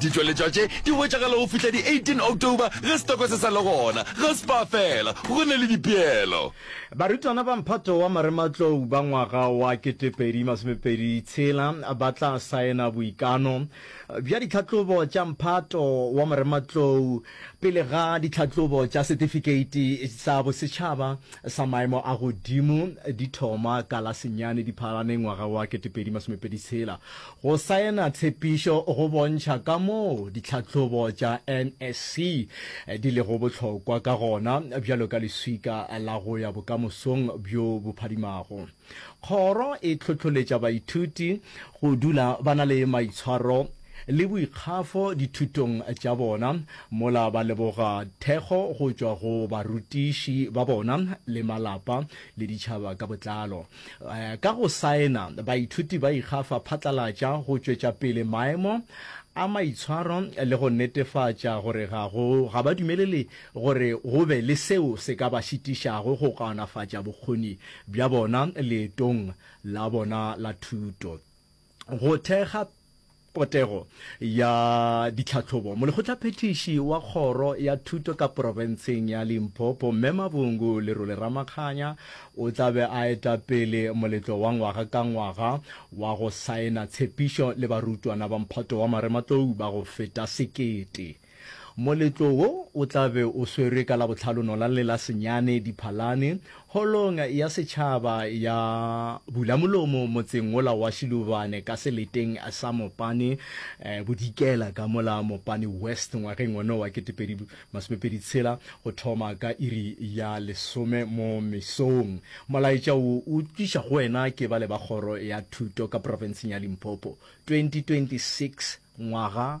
Ditšweletšwa tše di hwetšagala go fihla di 18 October ge setoko se sa le gona. Ga spa fela, go na le dipeelo. Barutwana ba mphato wa marematlou ba ngwaga wa 2026 ba tla saena boikano bja ditlhahlobo tša mphato wa marematlou pele ga ditlhahlobo tša setifikeiti sa bosetšhaba sa maemo a godimo di thoma ka la senyane Diphalane ngwaga wa 2026. Go saena tshepišo go bontšha kamoo ditlhahlobo tša NSC di lego bohlokwa ka gona bjalo ka leswika la go ya bokamosong bjo bo phadimago. Kgoro e hlohloletša baithuti go dula ba na le maitshwaro le boikgafo dithutong tša bona mola ba leboga thekgo go tšwa go barutiši ba bona le malapa le ditšhaba ka botlalo. Ka go saena, baithuti ba ikgafa phatlalatša go tšwetša pele maemo a maitshwaro le go netefatša gore ga go ga ba dumelele gore go be le seo se ka ba šitišago go kaonafatša bokgoni bja bona leetong la bona la thuto. Go thekga potego ya ditlhahlobo, molekgotlaphethiši wa kgoro ya thuto ka porofenseng ya Limpopo, Mme Mavhungu Lerole Ramakganya, o tla be a eta pele moletlo wa ngwaga ka ngwaga wa go saena tshepišo le barutwana ba mphato wa marematlou ba go feta sekete. Moletlo wo o tla be o swerwe ka Labohlalono la le la senyane Diphalane, Holong ya Setšhaba ya Bulamolomo motseng wola wa Shiluvane ka seleteng sa Mopane Bodikela ka mola Mopane West ngwageng ono wa ketepedi masomepedi tshela go thoma ka iri ya lesome mo mesong. Molaetša wo o tliša go wena ke bale ba Kgoro ya Thuto ka Profenseng ya Limpopo, 2026 Ngwaga